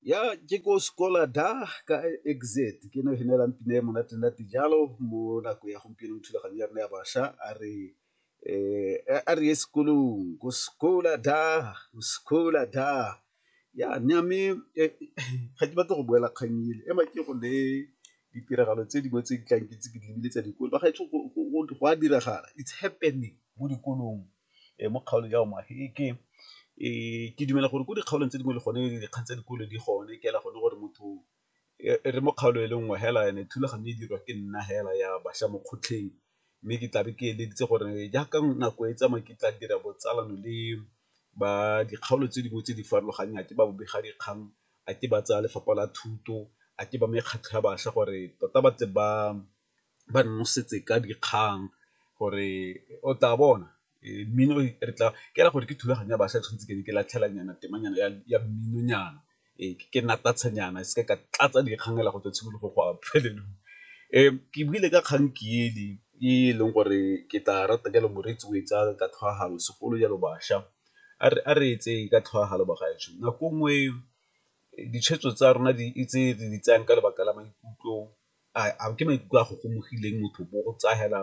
ya ke ko sekola da ka exit ke no hinelang pina e monate nate jalo mo nako ya gompieno mo thulaganyo ya rona ya bašwa a re eh a re ye sekolong ko sekola da ko sekola da ya nya me eh, ga ke batla go boela kgang ele ema ke go le ditiragalo tse dingwe tse di tlang ke tse ke di lebile tsa dikolo ba gaetsho go a diragala it's happening mo dikolong mo kgaolong ya omaheke ke dumela gore ko dikgaolong tse dingwe le gone dikgang tsa dikolo di gone ke ela gone gore motho re mo kgaolo e le nngwe hela ene thulaganyo e dirwa ke nna hela ya bašwa mo kgotlheng, mme ke tlabe ke eleditse gore jaaka nako e tsamaya ke tla dira botsalano le ba dikgaolo tse dingwe tse di farologaneng a ke ba bobega dikgang a ke ba tsaya lefapha la thuto a ke ba mekgatlho ya bašwa gore tota ba tle ba ba nnosetse ka dikgang gore o tla bona mmino re tla ke ra gore ke thulaganyo ya bašwa tshwanetse ke ne ke latlhela nyana temanyana ya mmino nyana ee ke natatse nyana e seke ka tlatsa dikgang fela go tswa tshimologong go ya bofelelong. Ke buile ka kgang ke ele e e leng gore ke tla rata jalo moreetsi o e tsaya ka tlhwaagano segolo jalo bašwa a re etse ka tlhwaagano bagaetsho, nako nngwe ditshwetso tsa rona tse re di tsayang ka lebaka la maikutlo a ke maikutlo a gogomogileng motho bo go tsaya fela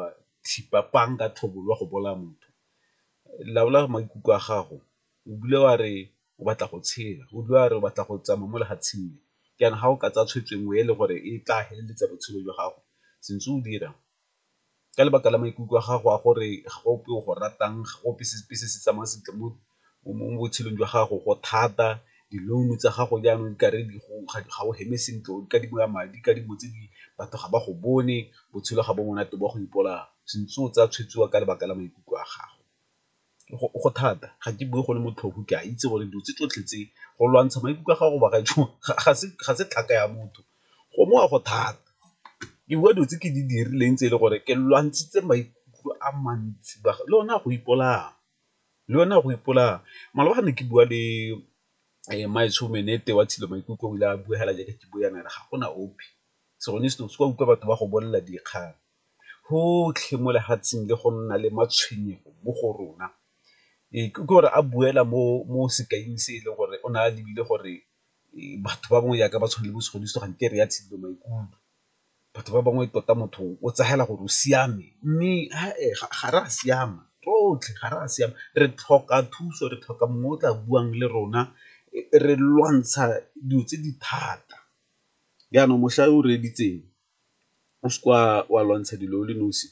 thipa pang ka tlhobolo wa go bolaya motho. Laola maikutlo a gago o bule wa re o batla go tshela, o bule wa re o batla go tsamaya mo lefatsheng le, jaanong ga o ka tsaya tshwetso e nngwe e le gore e tla feleletsa botshelo jwa gago se ntse o dira ka lebaka la maikutlo a gago a gore ga go ope o go ratang, ga go ope sepe se se tsamayang sentle mo botshelong jwa gago go thata, di-loan tsa gago jaanong di kare ga o heme sentle o kadimiwa madi ka dilo tse di batho ga ba go bone, botshelo ga bo monate bo a go ipolaya, se ntse o tsaya tshwetso ka lebaka la maikutlo a gago. go thata ga ke bue go le motlhofo ke a itse gore dilo tse tsotlhe tse go lwantsha maikutlo a gago ga se tlhaka ya motho go mo wa go thata. Ke bua dilo tse ke di dirileng tse e le gore ke lwantshitse maikutlo a mantsi le one a go ipolaya, le one a go ipolaya maloba ga ne ke bua le mmaetsho Meenete wa Tshilo Maikutlo o ile a bua fela jaaka ke bua jaana a re ga gona ope, sengwe le sengwe se o ka utlwa batho ba go bolelela dikgang. gotlhe mo lefatsheng le go nna le matshwenyego mo go rona. Ee, ke gore a boela mo sekaing se e leng gore o ne a lebile gore batho ba bangwe jaaka ba tshwana le bo Segodiso ga nke re ya tshidilo maikutlo. Batho ba bangwe tota motho o tsela gore o siame mme ga re a siama rotlhe ga re a siama re tlhoka thuso, re tlhoka mongwe o tla buang le rona re lwantsha dilo tse di thata jaanong mošwa o reeditseng o se ka wa lwantsha dilo o le nosi,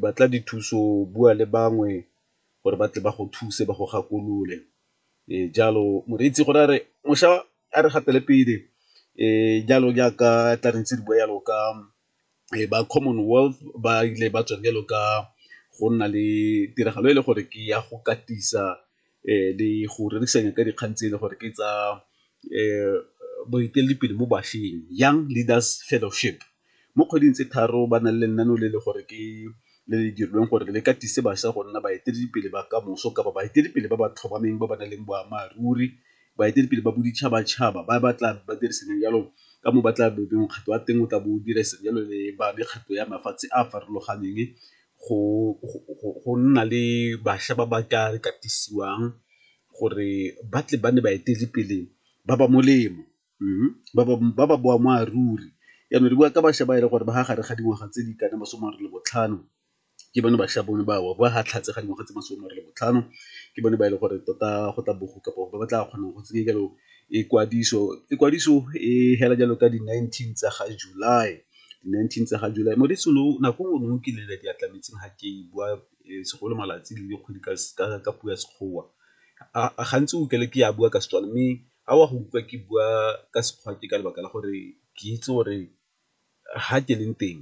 batla dithuso, bua le bangwe gore ba tle ba go thuse ba go gakolole. Jalo moreetsi gone a re mošwa a re gatele pele jalo jaaka tla re ntse re bua jalo ka ba common wealth ba ile ba tswa jalo ka go nna le tiragalo e le gore ke ya go katisa le go rerisana ka dikgang tse e le gore ke tsa boeteledipele mo bašweng Young Leaders Fellowship. Mo kgweding tse tharo ba na le lenaneo le le gore ke le le dirilweng gore le katise bašwa go nna baeteledipele ba kamoso kapa baeteledipele ba ba tlhomameng ba ba nang le boammaaruri, baeteledipele ba boditšhabatšhaba ba ba tla ba dirisanang jalo ka mo ba tla mokgatlho wa teng o tla bo o dira jalo le ba mekgatlho ya mafatshe a a farologaneng go nna le bašwa ba ba ka re katisiwang gore ba tle ba nne baeteledipele ba ba molemo ba ba boammaaruri. Jaanong re bua ka bašwa ba e leng gore ba fa gare ga dingwaga tse di ka nnang masome a mabedi le botlhano ke bone bašwa bone bao, ba fa tlhatse ga dingwaga tse masome a mabedi le botlhano ke bone ba e leng gore tota go tla bo go kabo ba ba tla kgonang go tsenye jalo ikwadiso. Ikwadiso e fela jalo ka di nineteen tsa ga July. di-nineteen tsa ga July moreetsi lo nako nngwe nngwe ke lele di a tlametseng ga ke bua segolo malatsi le dikgwedi ka puo ya Sekgowa. Gantsi o utlwele ke a bua ka Setswana mme a o a go utlwa ke bua ka Sekgowa ke ka lebaka la gore ke itse gore ga ke leng teng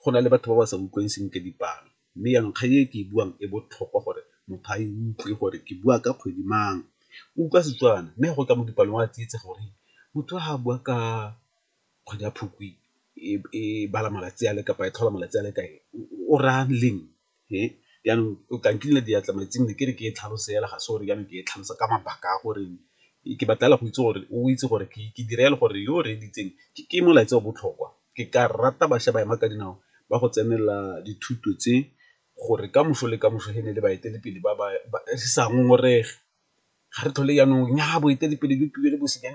go na le batho ba ba sa utlwang sentle dipalo, mme jaanong kgang e ke e buang e botlhokwa gore motho a e utlwe gore ke bua ka kgwedi mang o utlwa Setswana mme go tla mo dipalong wa tsietsa gore motho ga a bua ka. kgwedi ya Phukwi e bala malatsi a le kapa e tlhola malatsi a le kae o raya leng e jaanong o tla nkinela diatla metsing ne ke re ke e tlhalose fela ga se gore jaanong ke e tlhalosa ka mabaka a gore ke batla fela go itse gore o itse gore ke dira jalo gore yo o reeditseng ke molaetsa o botlhokwa. Ke ka rata bašwa ba ema ka dinao ba go tsenela dithuto tse gore ka moso le ka moso e ne e le baeteledipele ba re sa ngongorege ga re tlhole jaanong nnyaa boeteledipele bo tlile le bosenyi .